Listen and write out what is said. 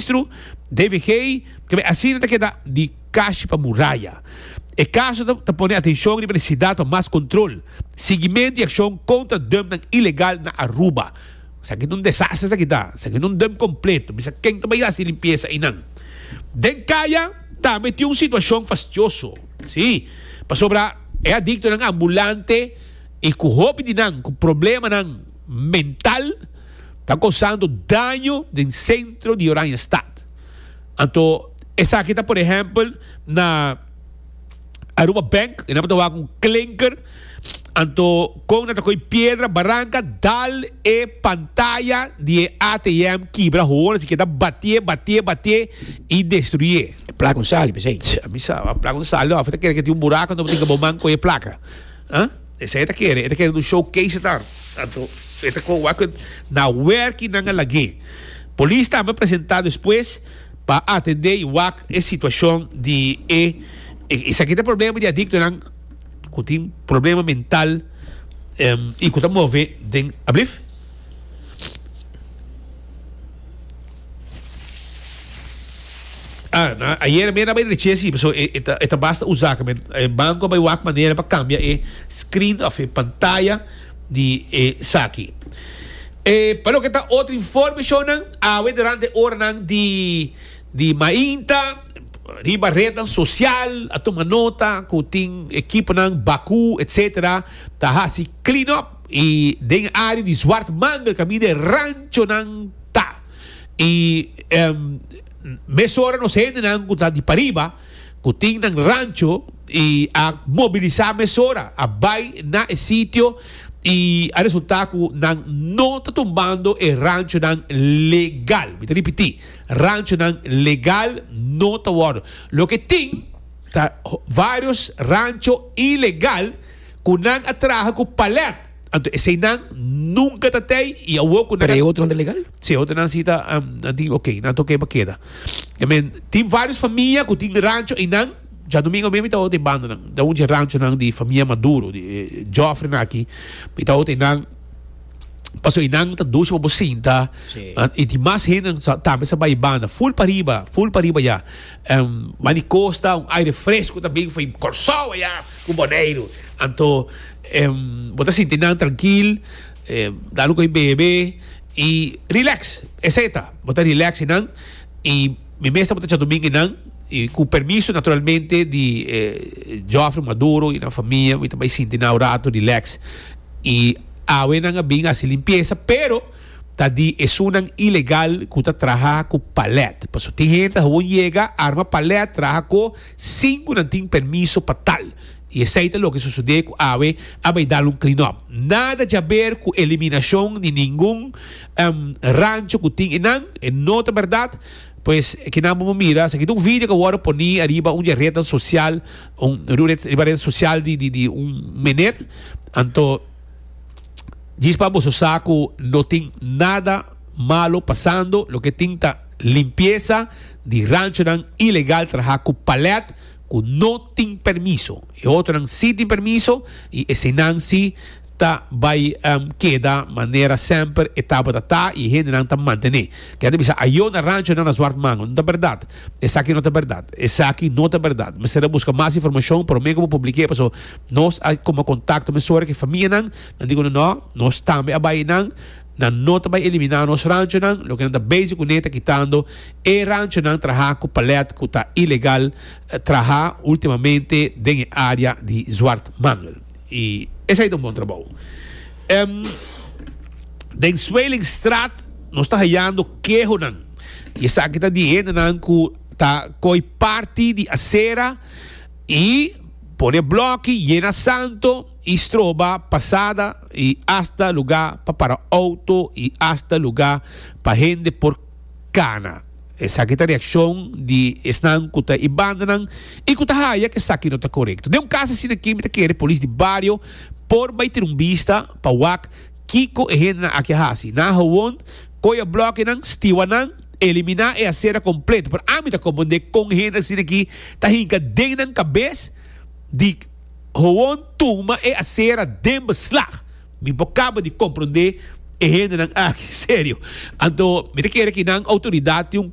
Ministro David Gay kende asina ta keda di kashi pa muraya. E kaso ta pone atenshon riba nesesidad pa mas kontrol, siguimento i akshon kontra dumpnan ilegal na Aruba. Esaki ta un desaster esaki ta. Esaki ta un dump kompleto. Misa ken ta bai hasi limpiesa einan. Den Kaya tambe tin un situashon fastioso. Sí, pasobra e adiktonan ambulante i ku hopi di nan ku problemanan mental, ta kosando daño den sentro di Oranjestad. Anto esaki ta por ehèmpel na Aruba Bank, e nan por ta wak un klinker, anto kon nan ta koy piedra baranka dal e pantaya di e ATM kibra hoor, así ke ta batié, batié, batié i destruyé. E plaka un sali p'esei. Tja, mi sa, a plaka un sali lo, afo ta kere ke tin un buraku anto bo tin ke bo man koy e plaka. Aa? Esei e ta kere, e ta kere un showcase e ta. Anto e ta con wak na wer ki nan a lag'é. Polis tambe a presenta despues pa atende y wak e situacion di e Esaki ta problema di adictonan cu tin problema mental y cu ta move den. Ablief. Ah, na ayer mera bay reche si, so e, e, ta, e ta basta usa que men e banco bay wak manera pa cambia e screen of e pantalla di e saki. E pa lo que ta otro informe shonan, awe durante oranan di di mainta riba redan social a tuma nota cu tin equiponan baku etcetera ta hasi clean up. I den e área di Zwart manga kaminda e ranchonan ta. I mesora nos hendenan ku ta di pariba, ku tin nan rancho, i a mobilisá mesora, a bai na e sitio i a resultá ku nan no ta tumbando e ranchonan legal. Mi ta ripití, ranchonan legal no ta wòrdu. Loke tin ta vários rancho ilegal. Cu nan a traha cu palet. Anto esey nan nunca ta tey y awo cu nan. Pero e otro nan ta legal? Si, e otro nan si ta tin ok, nan ta ok pa keda. I mean, tin varios famia cu tin rancho eynan, John Domingo men mi ta hote banda nan, ta un dje ranchonan di famia Maduro, di e Joffreynan aki, mi ta hote eynan, pasobra eynan ta dusha bobo sinta y tin mas hendenan tambe sa bay banda, full pariba, full pariba ya. Manicosta, un aire fresco ta bin fo'i Corsou aya cu Boneiru. Anto bo ta sinti nan trankil, da lo co'i bebe y relax. Esey ta, bo ta relax y nan y mi mes ta bo ta Tjatumingui nan y cu permiso naturalmente di Joffrey Maduro y nan famia mi ta bay sinti nan un rato relax y awe nan a bin haci limpieza pero. ta di esunnan ilegal ku ta traha ku palèt. Paso tin hende ta hawon yega, arma palèt, traha ko, sin ku nan tin permiso pa tal. I esei ta loke sosodé ku awe a bai dal un klinòp. Nada djaber ku eliminashon di ningun rancho ku tin enan, e no ta bèrdat. Pues kinan bo por mira, esaki ta un video ku a wòrdu poní ariba un di e retnan sosial, un riba e retnan sosial di un mener. Anto. Djis pa boso sa cu no tin nada malo pasando, loke tin ta limpieza di ranchonan ilegal traha cu palet cu no tin permiso. E otronan si tin permiso y eseinan si ta bay keda manera semper e tabata ta y e hendenan ta mantene. Kende bisa ayo na ranchonan na Zwart Mango, no ta berdad. Esaki no ta berdad. Esaki no ta berdad. Mester a buska mas informashon prome ku bo publik'e paso nos a kuma kontakto men sòru ku e famianan nan di ku nan nò nos tambe a bai nan. Nan no ta bai eliminá nos ranchonan. Loke nan ta bezig kuné ta kitando e ranchonan trahá ku palèt ku ta ilegal trahá ultimamente den e área di Zwartmangel. I esei ta un bon trabou. Den Zweelingstraat nos ta hayando kehonan. I esaki ta di hendenan ku ta koi parti di asera i pone blòki, yena santo i stroba pasada i asta lugá pa para outo i asta lugá pa hende por kana. Esaki ta reakshon di esnan ku ta e bandanan i ku ta haña ku esaki no ta korekto. Den un kas asina aki mi ta kere polis di bario por bai tene un bista pa wak Kiko e hendenan aki a hasi? Nan a howon koy e blòkenan, stiwa nan, eliminá e asera kompleto. Pero ami ta kompondé kon hende asina aki ta hinka den nan kabes di howon tuma e asera den beslag. Mi por kaba di komprondé e hendenan aki, serio. Anto mi ta kere ki nan outoridat tin un.